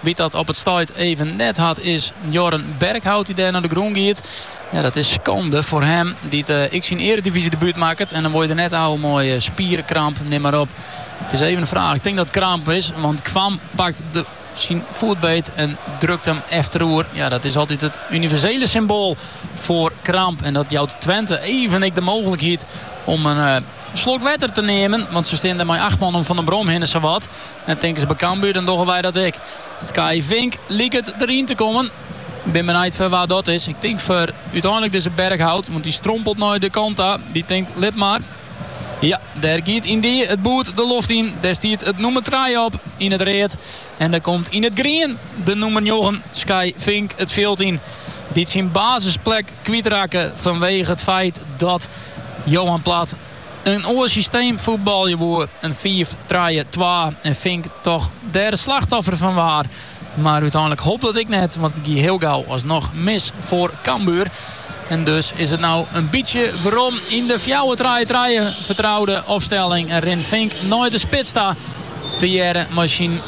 Wa't dat op it stuit even net hat is Jorn Berkhout dy't dêr nei de grûn giet. Ja, dat is skande foar him dy't uh, eh, ek syn eredivisie-debuut makket. En dan wol je der net ôf mei eh, spieren, kramp, neam mar op. It is even de fraach. Ik tink dat it kramp is, want Kvam pakt dêr syn foet beet en drukt him efteroer. Ja, dat is altyd it universele symboal foar kramp. En dat jout Twente even ek de mooglikheid om in eh, slok wetter te nimmen. Want se steane dêr mei acht man om Van den Brom hinne sawat. En tinken ze by Cambuur, dan dogge wy dat ek. Skye Vink liket deryn te kommen. Bin benijd foar wa dat is. Ik tink foar úteinlik dizze Berkhout, want dy strompelt nei de kant ta. Dy tinkt lit mar. Ja, dêr giet yndie it boerd de loft yn. Dêr stiet it nûmer trije op yn it read. En dêr komt yn it grien de nûmer njoggen, Skye Vink, it fjild yn. Dy't syn basisplek kwytrakke fanwege it feit dat Johan Plat in oar systeem fuotbalje woe, in fiif trije twa, en Vink toch dêr it slachtoffer fan waard. Mar úteinlik holp dat ek net, want it gie hiel gau alsnoch mis foar Cambuur. En dus is it no in bytsje werom yn de fjouwer trije trije fertroude opstelling en rint Vink nei de spits ta tegearre mei syn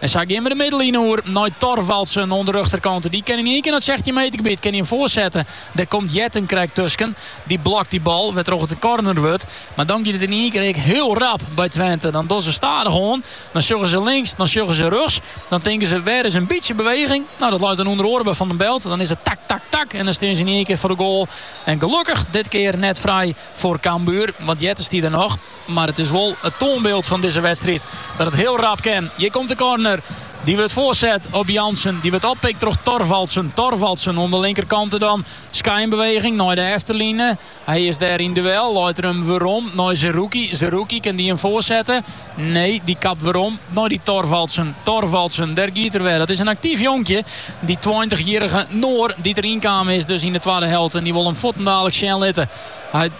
En sa gean we de midline oer nei Thorvaldsen oan de rjochterkant. Dy kin yn ien kear nei it 16 meter gebiet kin hy him foarsette. Dêr komt Jetten krekt tusken. Dy blokt dy bal, wêrtroch it in korner wurdt. Mar dan giet it yn ien kear ek hiel rap by Twente. Dan dogge se stadich oan. Dan sjogge se links, dan sjogge se rjochts. Dan tinke se, wêr is in bytsje beweging? Nou, dat leit dan ûnder oare by Van den Belt. Dan is it tak, tak, tak en dan stean se yn ien kear foar de goal. En gelokkich dit kear net frij foar Cambuur, want Jetten stie der noch. Mar it is wol it toanbyld fan dizze wedstriid dat it hiel rap kin. Hjir komt de korner. Dy wurdt foarset op Jansen. Dy wurdt oppikt troch Thorvaldsen. Thorvaldsen oan de linkerkante dan. Skynbeweging nei de efterline. Hy is dêr yn duel. Leit er him werom nei Zerrouki. Zerrouki, kin dy him foarsette? Nee, dy kapt werom nei dy Thorvaldsen. Thorvaldsen, dêr giet er wer. Dat is in aktyf jonkje, dy tweintich jierrige Noor dy't deryn kommen is dus yn de twadde helte. En dy wol him fuortendaliks sjen litte. Hy.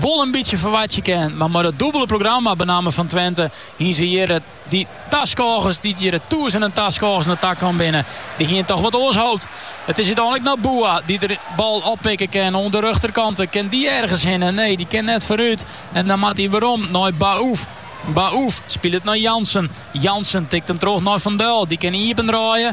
wol in bytsje ferwachtsje kin. Mar mei it dûbele programma benammen fan Twente hiene se hjir dy taskôgers, dy't hjir de tûzenen taskôgers nei ta kommen binne, dy hiene toch wat oars hoopt. It is úteinlik noch Boua dy't de bal oppikke kin oan de rjochterkante. Kin dy ergens hinne? Nee, dy kin net foarút en dan moat hy werom nei Baouf. Baouf spilet nei Jansen. Jansen tikt him troch nei Van Duil. Dy kin iependraaie,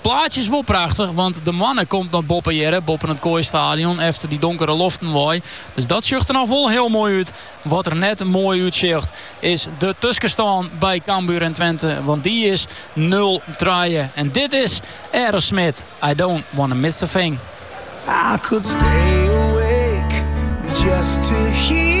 Plaatsje is wol prachtich, want de moanne komt noch boppe hjirre, boppen it Kooi Stadion, efter dy donkere loften wei. Dus dat sjocht der noch wol hiel moai út. Wat der net moai út sjocht, is de tuskestân by Cambuur en Twente, want dy is nul trije. En dit is Aerosmith, I don't wanna miss a thing. I could stay awake just to hear